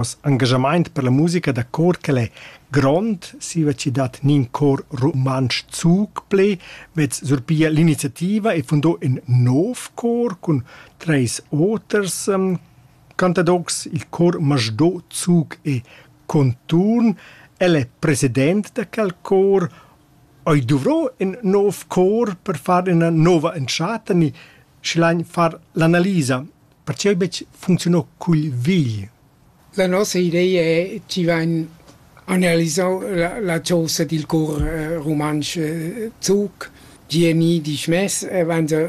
Noss engagamaint per la musica da cor quel è grond, siva chi dat nin cor rumantsch zuc ple, vez surpia l'iniziativa e fundò ün nov cor cun treis oters um, cantadocs, il cor masdò zuc e conturn. El è president da quel cor. Oi dovrò ün nov cor per far üna nova entschatta ni schilain far l'analisa Pertgei betg funcziunau cugl vegl? La nossa idea è tgi vegn analisau la chosa dil cor rumantsch zuc, tgi è ni dismess, vegn se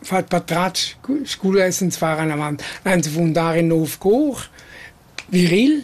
fatg patratgs sco lessens far anavant, vegn se fundar in nov cor viril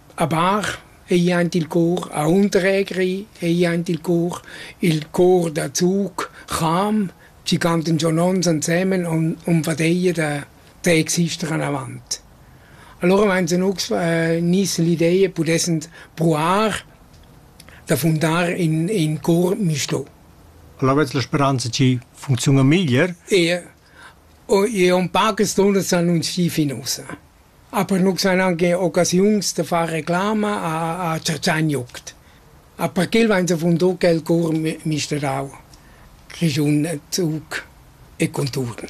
A Bar ei aint il cor aunc regri, ei aint il cor il cor da zug, Cham, chi cantan giò nons ansemen on on vadeia da da exister anavant. Alura vainsan nus gnüss l'ideia pudessend pruar da fundar in in cor misto. Alavetz la speranza chi funcziuna meglier? Ie. Oh, jeu un pagas dunnas annunzii fin ussa. Aber nus han anche occasiuns da far reclama a, a Ciaciagnuct. Aber quel vain savundò quel cour mi- misterau. Grischun Zug e conturn.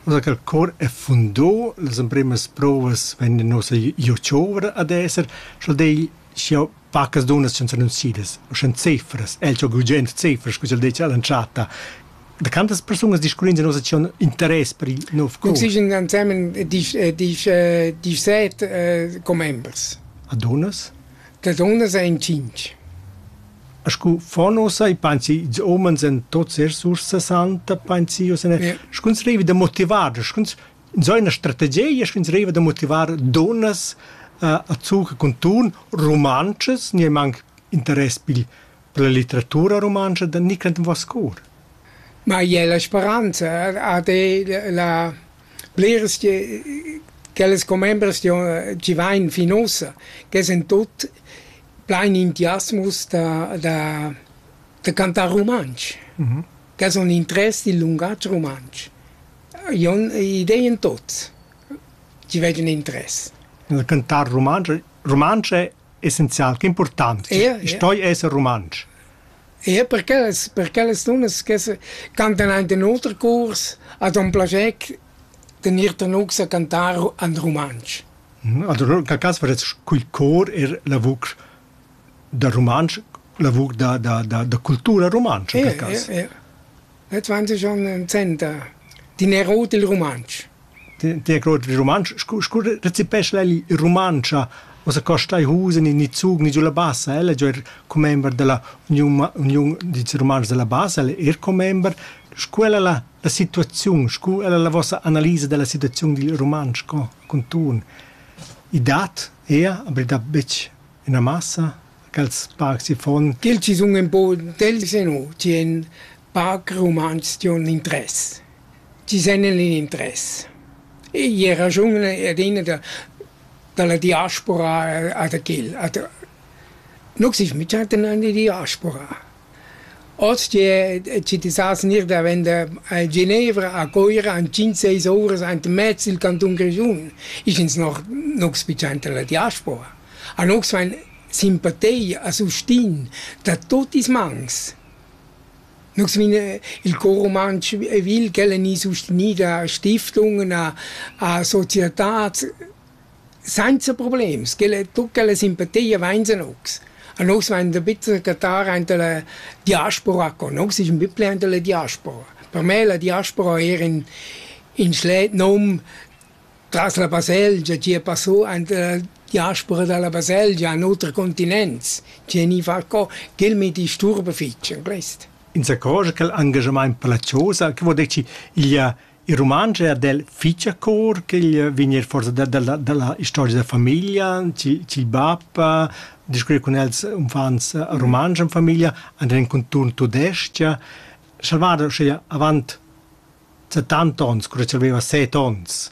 Ussa che il cor è fundò, las emprimas provas vegnan nossa iu giovre ad esser, sch'el dei, sch'jeu Pacas dunnas ch'han s'annunzidas, u shan cefras, el cho gugent cefras, scu ch'el dettia all'entschatta. Da quantas persunas discurrins in nossa acziun interess per il nov curs? Consiglian ensemen disch, disch, disch set uh, commembers. A dunnas? Da dunnas ein cinc. A scu fa nossa e pensi ils umens en tots er sursa santa pensi o se ne? Yeah. Scuns revi da motivar, scuns Ins ha ina strategia sch'ins deriva da motivar dunnas uh, a zucher cun tun rumantschas, niemanc interess pil per la litteratura rumantscha da Nicland Vascour. Ma è la speranza ha la bleres che les commembers ci vain fin ossa, che sind tot plein entusiasmus da, da, da cantar romansch. Mm -hmm. che sun l'interess dil lungatg rumantsch. Io ho idea in tuots chi vegian interess. Il cantar rumantsch rumantsch è essenzial, che important. Ia, ia. Stoi esser rumantsch. Ia per quellas per quellas dunnas che se cantan aint in oter curs hat un plager de gnir tenugs a cantar an rumantsch. Allora, in quel cas varets cul cor er la vucr da rumantsch, lavur da, da, da, da cultura rumantscha per cass. Eh, eh, eh. 20 anni 60 din rot il rumantsch. Ti rot il rumantsch, scu, scu recipesce lei il rumancia, o se costa i husen in ni zug ni giulla bassa, ella giò er commember della union, union di rumantsch della bassa, ella er commember, scu ella la, la situazione, scu ella la vostra analisa della situazione del rumantsch con, con tun. I dat Ea, aber da betg üna massa ch'els parcs fon. Quels chi sun ün po dels e no, chi han parc rumantsch chi han interess, chi sen in interess. E i raschun adina da da la diaspora a da quel. A da nu gnüt mittà dannà in diaspora. Oz tie ti ti sas gnir davenda a Genevra, a Coira in tschient seis ouras aint mez il cantun Grischun. Ich ins noch nu spiciainta la diaspora. A nus vain simpatia a sustin da tuot ils mans. Nus vin il Cor rumantsch vil ch'el eni sustenida a stiftungen, a a societats Sainza problems, ch'ella e tut ch'ella simpatia vainsan ocs. A nus vain da bitser cattar aint da la diaspora co. No ais ün bipli aint da la diaspora. Per me la diaspora eir ün ün schlet nom tras la baselgia, chi a passò aint da la diaspora da la baselgia a oters continents, chi eni far co, ch'el mi disturba fich in quist. Insacò cha quel angajamaint per la chosa, che vuol dir chi igl ha Il rumantsch è del fich a cor ch'igl vegn eir forsa da, dalla, dalla historia da famiglia, ch'il, ch'il bap eh, discurre cun els uffants eh, rumantsch in famiglia, and in conturn tudestg. Salvador uschea avant 70 ons, cura ch'el aveva 7 ons,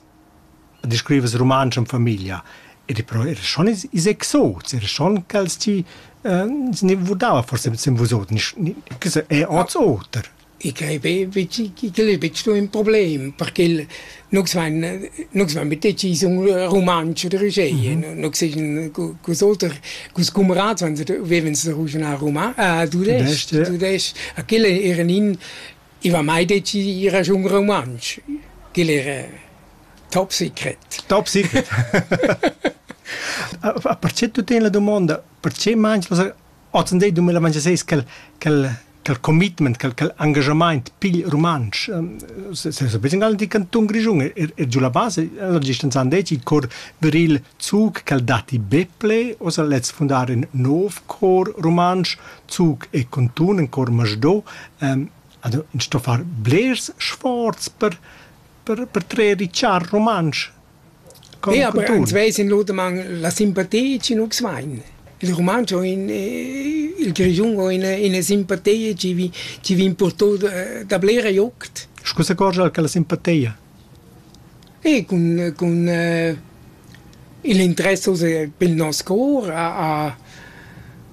discriveva rumantsch in famiglia. Ed però era schon is, is exots, era schon ch'els ti eh, se ne vudava forse sem vusot, nis, ni, che se, è ots oter. I quai be igl è betg sto ün problem perché nus vain nus vain be decis ün rumantsch oder uschè. Nus seign culs oter culs cumrats vevens da ruschnar ruma tudesch tudesch a quel eran in i va mai decis ir giù un rumantsch quel era top secret top secret perché tu teni la domanda perché mangi Ozendi dumengia seis quel quel quel commitment, quel quel engagamaint pigl rumantsch. Seis be ingal di cantun Grischun er er giu la base, ella distanzan deci cor viril Zug quel datti Beple, oza lez fundar in nov cor rumantsch, Zug e Contun in cor Masdo. Also in sto far blers sforz per per per trer richar rumantsch. Nea, aber ans vesin lur daman la simpatia chi nus vain. Il rumantsch ho ün, il grischun ho üna, üna simpatia chi vi, chi vian purtò da, da blera juct. Scu s'accorgia che la simpatia? E cun, cun il interess pel nos cour a, a,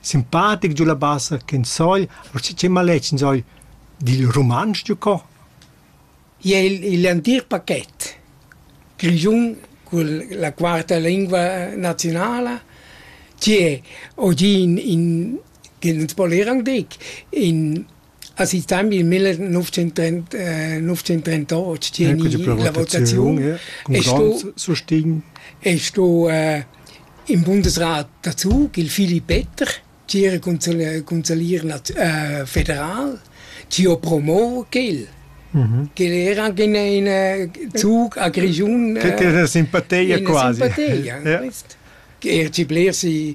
simpatic giu la bassa ch'in sogl, uschè che maletg in sogl dil rumantsch giu co? Ja, il, il entir paquet grischun cun la quarta lingua naziunala che oggi in, in che nuns po leran dig in Ha si tam il 1938 tgeni la votaziun e sto e sto in Bundesrat dazu il Filip Petter tgira consalier federal tio promo quel quel era anche in zug a Grigiun che era simpateia quasi simpateia quest er ci bler si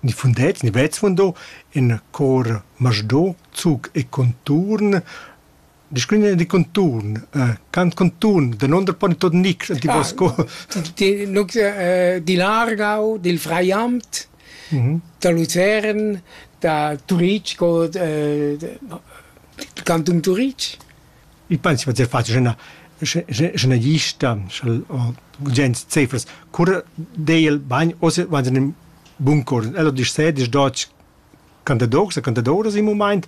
Il fundet gni vezzundo in cor masdò, zuch e conturn. Discurrina di conturn, cant conturn, danunder poni tuot nichs a ti voss cor? Di l'Argau, dil Fraiamt, da Luzern, da Turic, cò dal cantun Turic. Ich penso che far schena scenagista o gens cefers cura deiel bagn o se van in bun cor. Ella disch se, disch dotg cantadours e cantadoras in mumaint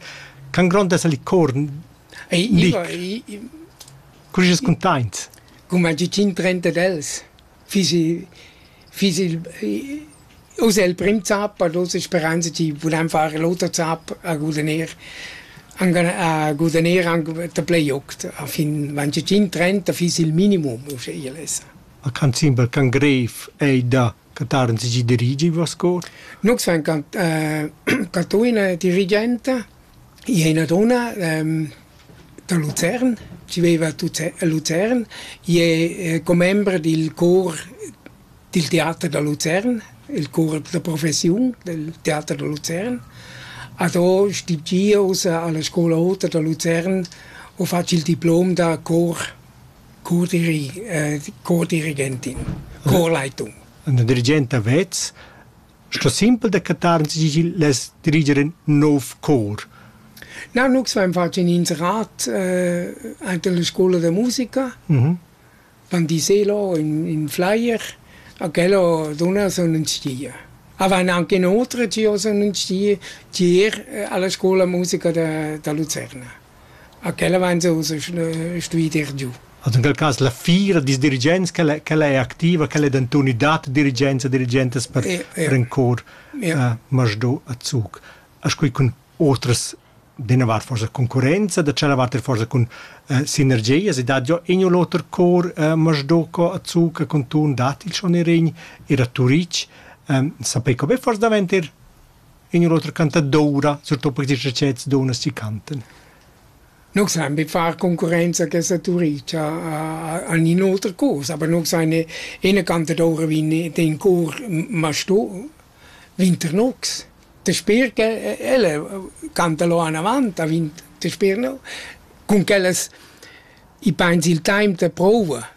ch'han grond esser il cor dic. Cur is containt? Cum ha dit in trenta d'els. fiss i fiss il uss è il prim zap, per lur speranza chi vulan far l'oter zap a gudagnir anc a gudagnir anc da play aut. A fin wenn sie Team trennt, da fiss il minimum uschia lessa. A can simpel can greif ei da Cataren si dirigi va score? Nux vem Catona dirigente, ina donna, Da Luzern, chi veiva a Luzern, i es commember dil cor dil teater da Luzern, il cor da professiun del teater da Luzern. A do stimm gios alla scoula ota da Luzern u fatsch il diplom da cor cordiri cordirigentin, corleitung. Ün dirigent da vez Sto simpel decretar sigil less diriger in nov cor. Na, nu svein fatg in inserat eh, ante la scola de musica. Mm -hmm. Van diselo in, in flyer, a quello dona son un stia. Avan anche inoltre ci sono un stia tier eh, alla scuola musica da, da Lucerna. A quella vain jeu stui dir giu. Also in quel cas la fira dils dirigents quella quella è activa, quella è denton i dat dirigenza dirigentas per ja, ja. per in cor ja. uh, Masdó a Zug. As quei cun otras d'ina vart forsa concurenza, da tschella vart forsa cun uh, sinergias, e dat già in o l'oter cor uh, Masdó co a Zug con ton dat il schon in regn, era Turic, um, sapei co be forse davent ir in otra cantadoura, surtut per questi sets d'unas si canten. Non san bi far concorrenza che saturicia a, a un'altra cosa, aber non san eine cantadoura wie den Chor Masto Winternox. Der Speer, elle canta lo an avant, a vint der Speer no, con quellas i pens il time de prova.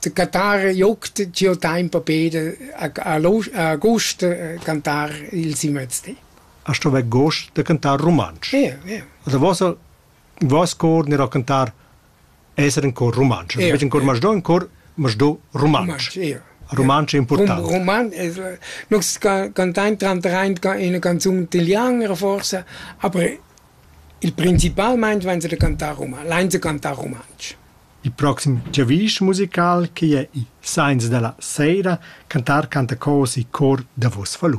De cantar juckt giò taimp a Peder agost cantar il Simmerstee. A sto vair gost da cantar rumantsch. Ie, ie. Also vossa, voss cor n'era cantar esser in cor rumantsch. Ie. Invece in cor masdò, in cor masdò rumantsch. Ie. Rumantsch è importante. Roman, noi cantain trantraint in canzun italiana forse, aber Il principalmein vain els da cantar roman, lain els da cantar rumantsch. Il proxim giavisch musical che jai sainza da la seira cantar canta cos e cor davos falun.